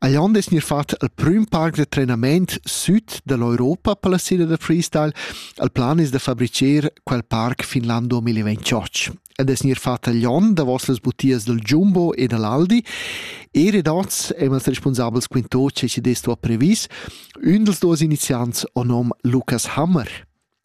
Ei onn es gnir fat al prüm parc da trenament süd da l'Europa per la sera da freestyle. Il plan es da fabricher quel parc fin l'an 2028. Ed es gnir fat agl onn davos las butias dal Jumbo e dall'Aldi. E redots e'ls respunsabels quinto che ci dess tua previs, ün dels duos iniziants o nom Lukas Hammer.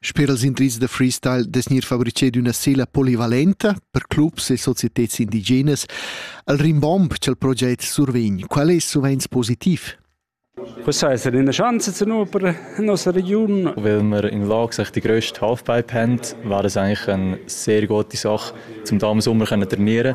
Sper els indrizs da freestyle dess gnir fabrichet üna sela polivalenta per clubs e societeds indigenas al rimbomb cha'l proget survegn. Qual es suvenz positiv? Was heisst in der Chance zu nur in unserer Region? Weil wir in der Lage sind, die grösste Halfpipe haben, wäre das eigentlich eine sehr gute Sache, um da im Sommer trainieren zu können.